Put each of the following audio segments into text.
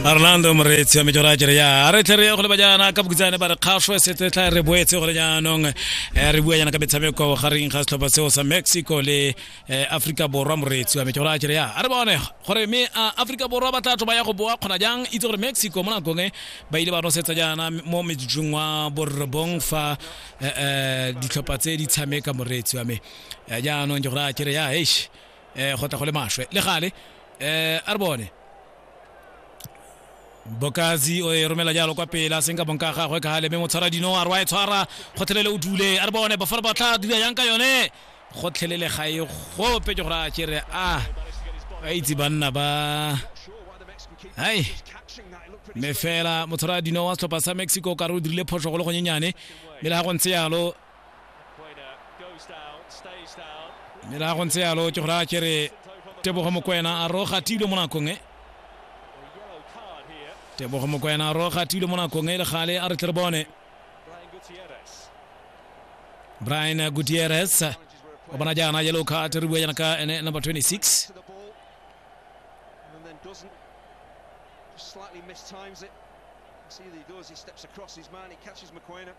arlando moreetsi wa mejora kere ya re tle re ye go le bajana ka bokutsane ba re kgašwe setse tla re boetse go le jaanong eh, re bua jana ka metshameko gareng ga setlhopha seo sa mexico le eh, africa borwa moreetsi wa mejora kere ya a re bone gore me a africa borwa ba tla tlo ba ya go boa kgona jang itse gore mexico mo nakong e ba ile ba nosetsa jaana mo metsong wa borobong fa eh, eh, ditlhopha tse di tshameka moreetsi wa me Eh, jaanong ke gore a kere ya eish um go tla go le maswe le gale um a re bone bokazi o e romela jalo kwa pele a seng ka bonka gagwe ka gale mme motshwara dino a re wa e tshwara gotlhelele o dule a re bone bafara ba tla dula yang ka yone gotlhelele ga e gope ke gore a kere a ba itse banna ba hai mme fela motshwara dino wa setlhopha sa mexico ka re o dirile phoso go le gonyenyane mme le ga go ntse yalo mme la go ntse yalo ke go raya ke re tebogo mokwena a roga tilo mo nakong e tebogo mokwena a roga tilo mo nakong e le gale a re tle re bone brian gutierrez o bona jaana yellow card re bua jaana ka ene number 26 Slightly mistimes it. See what he does. He steps across his man. He catches McQuainer.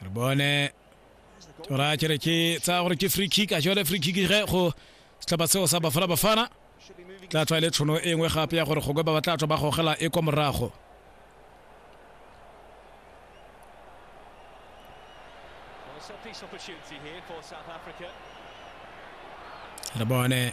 re bone tora kere ke tsaya gore ke free kick a ke yone free kick ge go setlhopha seo sa bafana bafana tla tswa e le tshono e nngwe gape ya gore gongwe ba ba tla tswa ba gogela e kwa morago re bone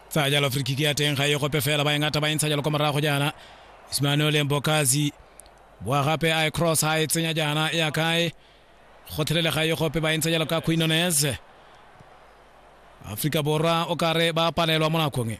tsaya jalo free kick ya teng ga e gope fela ba e ngata ba e ntsha jalo kwa morago jaana ismanuele mbokazi boa gape a e cross a e tsenya jaana ya kae go thelele ga e gope ba e ntsha jalo ka quinones aforika borwa o kare ba palelwa mo nakong e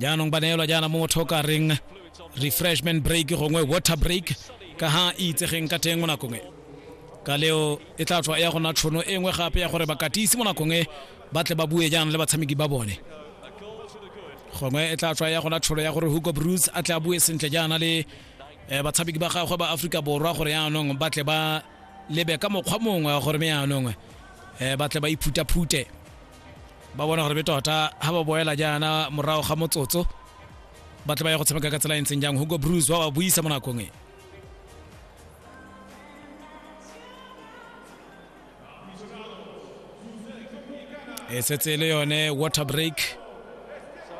jaanong ba neelwa jaana mo motho o ka reng refreshment break gongwe water break ka ha e itsegeng ka teng mo nakong e ka leo e tla tswa e ya gona tshono e nngwe gape ya gore bakatisi mo nakong e ba tle ba bue jaana le batshameki ba bone gongwe e tla tswa e ya gona tsholo ya gore hugo bruce a tle a bue sentle jaana le um batshameki ba gagwe ba aforika borwa gore yaanong ba tle ba lebe ka mokgwa mongwe wa gore me yaanong um ba tle ba iphutaphute ba bona gore be tota ha ba boela jaana morago ga motsotso ba tle ba ya go tshameka ka tsela e ntseng jang hugo bruce ba ba buisa mo nakong e e setse e le yone water break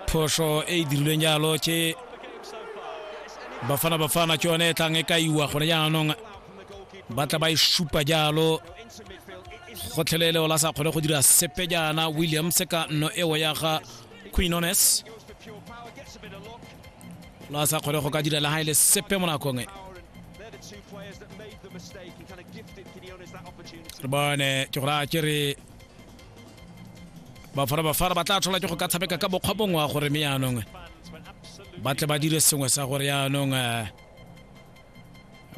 phoso e e dirilweng jalo ke bafana bafana ke yone e tlang e ka iwa gone jaanong ba tla ba e supa jalo gotlhelele ola sa kgone go dira sepe jaana williams ka nno eo ya ga quinones la sa kgone go ka dira le ga e le sepe mo nakong e re bone ke gore a ke re bafara bafara ba tla tlhola ke go ka tshameka ka bokgwa bongwe wa gore me yaanong ba tle ba dire sengwe sa gore yaanong um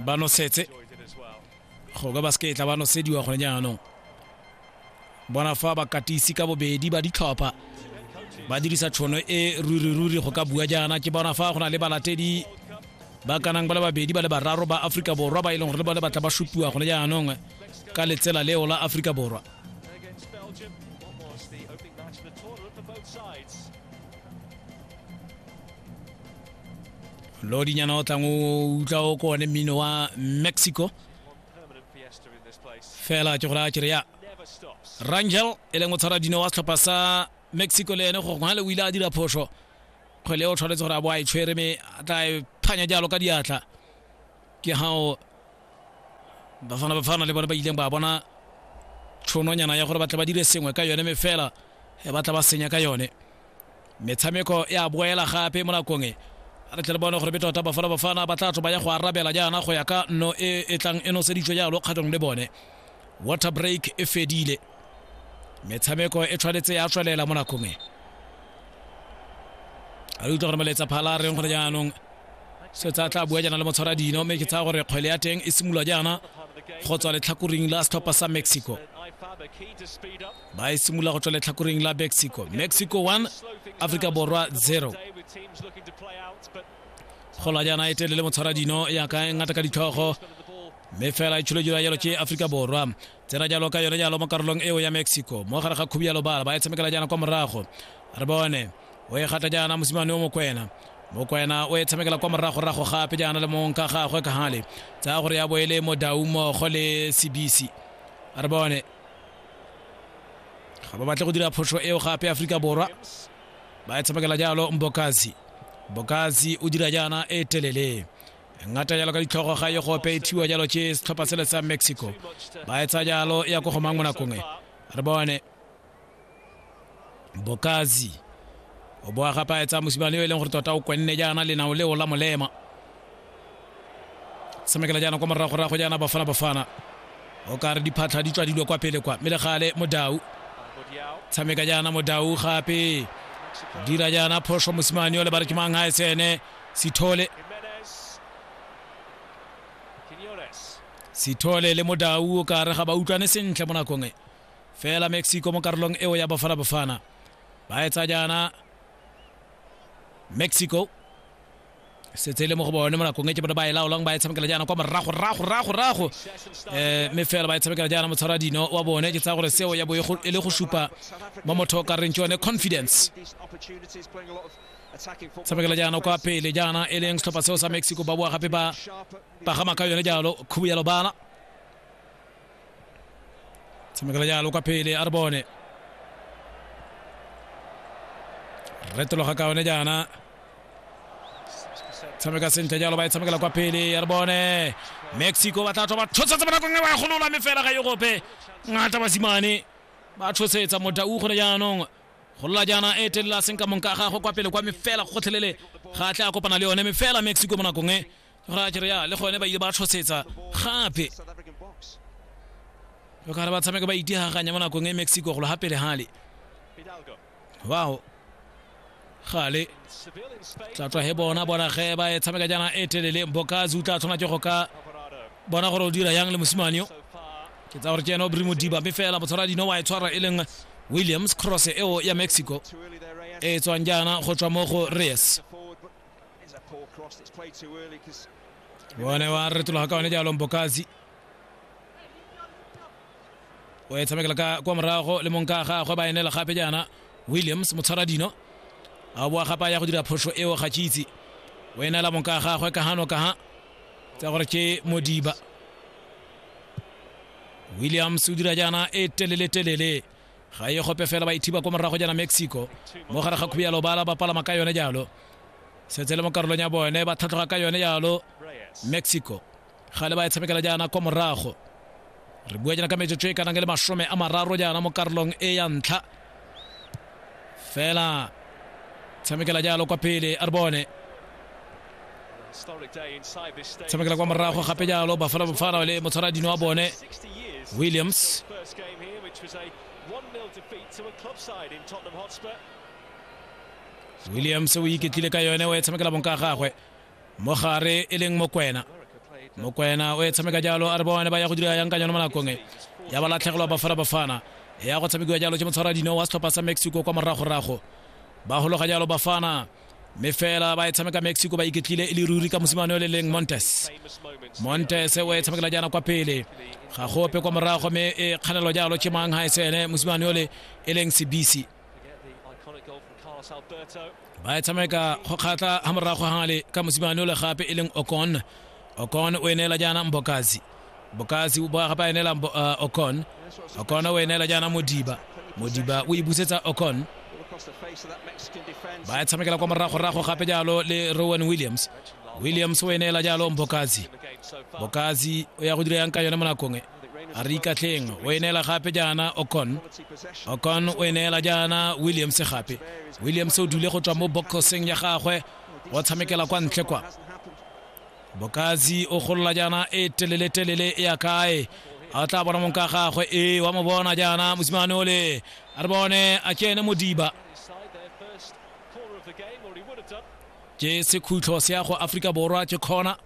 ba nosetse go ka basketla ba nosediwa gone jaanong bona fa bakatisi ka bobedi ba ditlhopha ba dirisa tšhono e ruriruri go ka bua jaana ke bona fa go na le balatedi ba kanang ba le babedi ba le bararo ba aforika borwa ba e leng gore le bone batla ba supiwa gone jaanong ka letsela leo la aforika borwa lodinyana o tlang o utlwa o ko one mmino wa mexico fela ke gore a kere ya rangel e leng o tshwara dino wa setlhopha sa mexico le ene gore le o ile a dira phoso kgwele o tshwanetse gore a bo a e tshwere me a tla e phanya jalo ka diatla ke gao bafana bafana le bone ba ileng ba bona tshononyana ya gore ba tla ba dire sengwe ka yone me fela e batla ba senya ka yone metshameko ya boela gape mo nakong e re tle le bone gore be tota bafana bafana ba tla tloba ya go arabela jaana go ya ka nno e e tlang e noseditswe jalo kgatong le bone water break e fedile metshameko e tshwanetse ya tswelela mo nakong e a re utlwa gore moletsa phala a reng gore jaanong se tsa tla bua jaana le motshwara dino mme ke tsaya gore kgwele ya teng e simolola jaana go tswa letlhakoring la setlhopha sa mexico ba e simolola go tswa letlhakoreng la mexico mexico 1 aforika borwa 0 golajana e telele motshwara dino yaka e ngata ka ditlhogo mme fela e tsholojira jalo ke aforika borwa tsena jalo ka yone jalo mo karolong eo ya mexico mo gare ga khubi ya lobala ba e tshamekela jaana kwa morago re bone o e gata jaana mosimane o mokwena mokwena o e tshamekela kwa moragorago gape jaana le mong ka gagwe ka gale tsaya gore ya boele mo daumogo le sebisi re bone ga ba batle go dira phoso eo gape aforika borwa ba e tshamekela jalo mbokazi mbokazi o dira jaana e telele ngata jalo ka ditlhogo ga e gope e thiwa jalo ke setlhopha sele sa mexico ba etsa jalo ya ko go mang mo nakong e re bone bokazi o bo a gapaetsa mosimane yo e leng gore tota o kwenne jaana lenao leo la molema tshamekela jaana kwa moragorago jaana bafana bafana o ka re diphatlha di tswa dilo kwa pele kwa mme le gale modau tshameka jaana modau gape dira jaana phoso mosimane o le ba re ke mang ga e tsene sithole sithole le modau o ka re ga ba utlwane sentle mo nakong e fela mexico mo karolong eo ya bafana bafana ba etsa jaana mexico setse e le mo go bone mo nakong e ke bone ba e laolang ba e tshamekela jaana kwa morago rago rago rago um mme fela ba e tshamekela jaana motshwara dino wa bone ke tsaya gore seo ya bo e go- e le go supa mo motho o ka reng ke yone confidence tshamekela jaana kwa pele jaana e leng setlhopha seo sa mexico ba boa gape ba pagama ka yone jalo khubu ya lobala tshamekela jalo kwa pele a re bone retologa ka one jaana tshameka sentle jalo ba e tshamekela kwa pele ya re bone mexico ba tla tswa ba tshotsetse bonakong e ba e golola mme fela ga e gope ngata basimane ba tshosetsa modau gone jaanong golola jaana e telela seng ka monka gagwe kwa pele kwa mefela gotlhelele ga a tle a kopana le yone mefela mexico mo nakong e ra kere ya le gone ba ile ba tlhosetsa gape o kare ba tshameka ba itihaganya mo nakong e mexico golo gape le gale wow gale tla tswa he bona bona ge ba e tshameka jaana e telele mbokazi o tla tshwana ke go ka bona gore o dira yang le mosimane yo ke tsa gore ke ene o brimo diba mme fela motshwara dino wa e tshwara e leng williams cross eo ya mexico e tswang jaana go tswa mo go reyes bone wa retologa ka one jalo mbokazi o e tshamekela ka kwa morago le mong ka gagwe ba enela gape jaana williams motshwara dino a boa gape a ya go dira phoso eo ga tšitse o enela mong ka gagwe ka gano ka ga tsa gore ke modiba williams o dira jaana e telele telele ga e gope fela ba ithiba ko morago jana mexico mo gare ga khubialo bala ba palama ka yone jalo setse le mo karolong ya bone ba tlhatlhoga ka yone jalo mexico ga le ba e tshamekela jaana kwa morago re bua jana ka metsotso e kanang le masome a mararo jaana mo karolong e ya ntlha fela tshamekela jalo kwa pele a re bone tshamekela kwa morago gape jalo bafana bofana le motshwaradino wa bone williams williams o iketlile ka yone o e tshamekela bonka gagwe mo gare e leng mokwena mokwena o e tshameka jalo a re bone ba ya go dira yang ka yone mo nakong e ya ba latlhegelwa bafana bafana ya go tshamekiwa jalo ke motshwaradino wa setlhopha sa mexico kwa moragorago ba gologa jalo bafana mme fela ba e tshameka mexico ba iketlile e le ruri ka mosimane o le leng montes montes o e tshamekela jaana kwa pele ga gope kwa morago mme e kganelo jalo chemang ha esene mosimane o le e leng sebisi ba e tshameka go kgatlha ga morago gale ka mosimane o le gape e leng okon okon o e neela jaana mbokasi bokasi moraga ba e neela Mbo- ah, okon okon o e neela jaana modiba modiba o e busetsa okon ba e tshamekela kwa moragorago gape jalo le rowan williams williams o e neela jalo mbokasi bokasi o ya go dira yang ka yone mo nakong e a re ikatlheng o e neela gape jaana okon okon o e neela jaana williams gape williams o dule go tswa mo boxing ya gagwe o tshamekela kwa ntle kwa bokatsi o golola jaana e telele-telele e ya kae a o tla bona mong ka gagwe e wa mo bona jaana mosimane ole a re bone a kene modiba ke sekhutlho se ya go aforika borwa ke kgona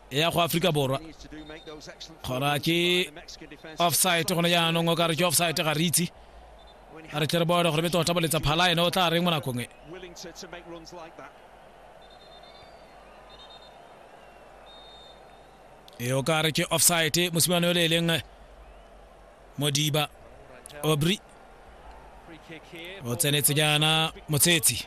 e ya go aforika borwa kgona ke offsite gone jaanong o ka re ke offsite ga re itse a re tle re bone gore be tota boletsa phala ene o tla reng mo nakong e e o ka re ke offside mosimane yo le e leng modiba obry o tsenetse jaana motshetsi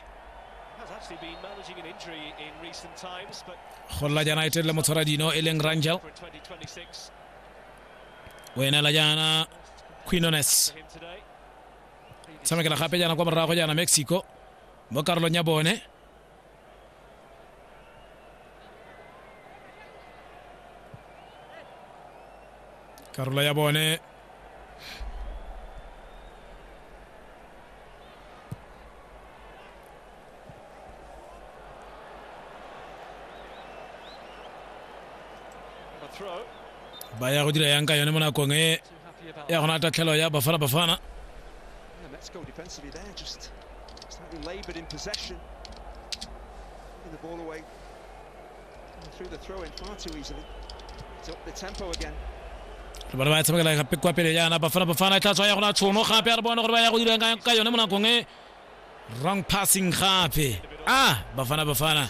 go lla jaana e telele motshwara dino e leng rangel o enela jaana quinones tshamekela gape jaana kwa morago jaana mexico mo karolong ya bone karolo ya bone ba ya go dira yang ka yone mo nakong e ya gona tatlhelo ya bafana bafana the ball away and threw the throw in far too easily. It's up the tempo again. ba ba tshamekela gape kwa pele yana bafana bafana e tla tswa ya gona tshono gape a re bone gore ba ya go dirang ka yone mo nakong e wrong passing gape a bafana bafana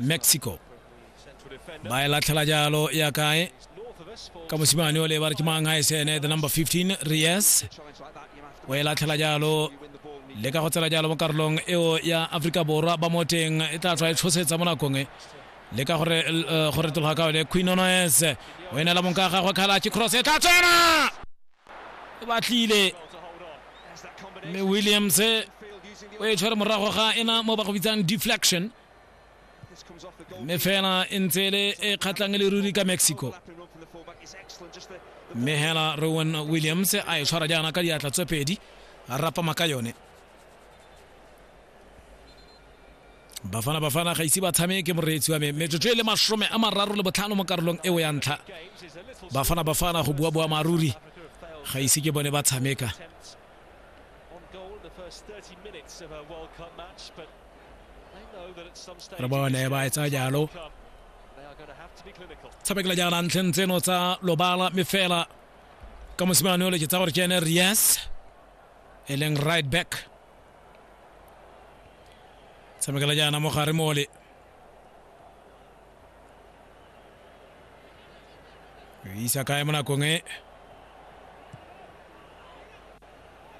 mexico ba e latlhela jalo ya kae ka mosimane o le ba re ke mang e sene the number 15 ries o e latlhela jalo le ka go tsela jalo mo karolong eo ya aforika borwa ba mo teng e tla tswa e tshosetsa mo nakong e le ka gore eh, go retologa ka one queen onoes o e neela monka gagwe khala ke cross e tla tsena e batlile mme williams o e tshwere morago ga ena mo ba go bitsang deflection mme fela e ntse e le e kgatlhang e le ruri ka mexico mme hela rowan williams a e tshwara jaana ka diatla tse pedi a rapama ka yone bafana bafana ga ise ba tshameke moreetsi wa me metsotso e le masome a mararo le botlhano mo karolong eo ya ntlha bafana bafana go bua boamaruri ga ise ke bone ba tshameka re bone ba etsa jalo tshamekela jaana ntlheng tseno tsa lobala me fela ka mosimane o leke tsa gore ke ene rias e leng right back tshamekela jaana mo gare mole isa kae mo nakong e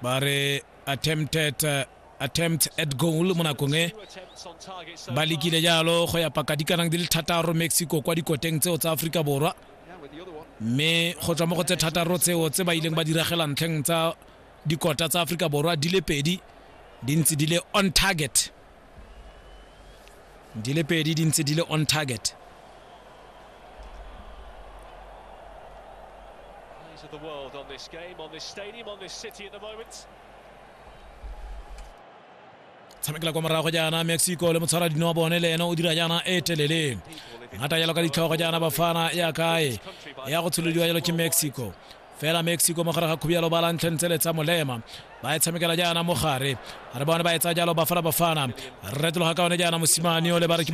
ba re attempted uh, attempt at goal mo nakong e ba lekile jalo go ya paka dikanang di le thataro mexico kwa dikoteng tseo tsa aforika borwa mme go tswa mo go tse thataro tseo tse ba ileng ba diragela ntlheng tsa dikota tsa aforika borwa di le pedi di ntse di le on target di le pedi di ntse di le on target Eyes of the world on this game, on this stadium, on this city at the moment. tshamekela kwa morago jaana mexico le motshwara dino wa bone le ene o dira jaana e telele ngata jalo ka ditlhogo jaana bafana ya kae ya go tsholodiwa jalo ke mexico fela mexico mo gare ga khubialo ba lantlheng tsele tsa molema ba e tshamekela jaana mo gare re bone ba e tsaya jalo bafana bafana re retologa ka one jaana mosimane o le ba re ke